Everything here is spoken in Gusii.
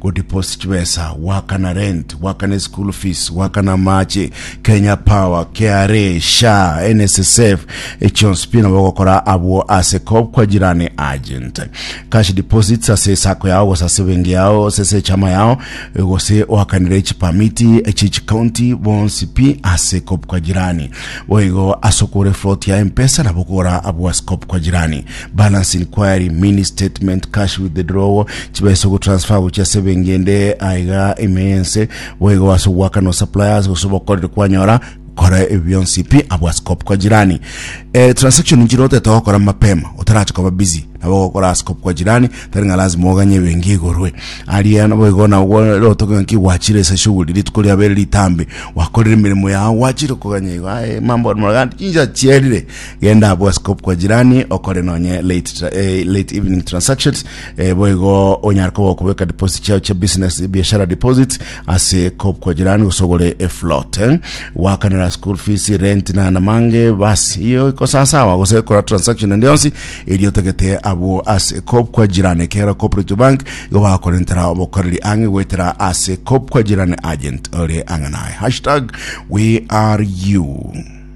Godeposit chibesa, goakana rent, goakana eschool fees, goakana amache, Kenya Power, KRA, SHA, NSSF, echionsi pi nabo ogokora abwo ase Coop kwa Jirani Agent. Cash deposits ase esako yao gose ase ebenki yao gose ase echama yao eh, gose oakanire chipamiti echi chikaunti bonsi pi ase Coop kwa Jirani. Boigo ase okogora efloti ya empesa nabo okogora abwo ase Coop kwa Jirani. balance inquiry mini statement cash withdrawal chibesa ogotransfer gochia ase ebengende aiga emense boigo ase ogwakana suppliers gose obokoreri kwanyora kora ebyo bionsi pi abwa scope kwa jirani eh, transaction njiro otete gokora mapema otarache koba busy nabo gokora ase scope kwa jirani tari ng'a lazima oganye ebengi igorwe aria nabo igo nagwo otoke ng'aki gwachire ase shughuli rituko riabere ritambe wakorire emeremo yao gwachire koganya igo aye mambo muragandi chinsa chierire Genda abwo askopu kwa jirani okore nonye late, tra- eh, late evening transactions eh, boigo onyare koba okobeka deposit chao chia business biashara deposit ase kopu kwa jirani gosogore eflot eh. wakanera school fees rent na namange basi iyo iko sasawa gose kora transaction ende yonsi eri otagete abwo ase kopu kwa jirani kera cooperative bank igo bakorentera obokoreri ang'e goetera ase kopu kwa jirani agent ore ang'e naye hashtag we are you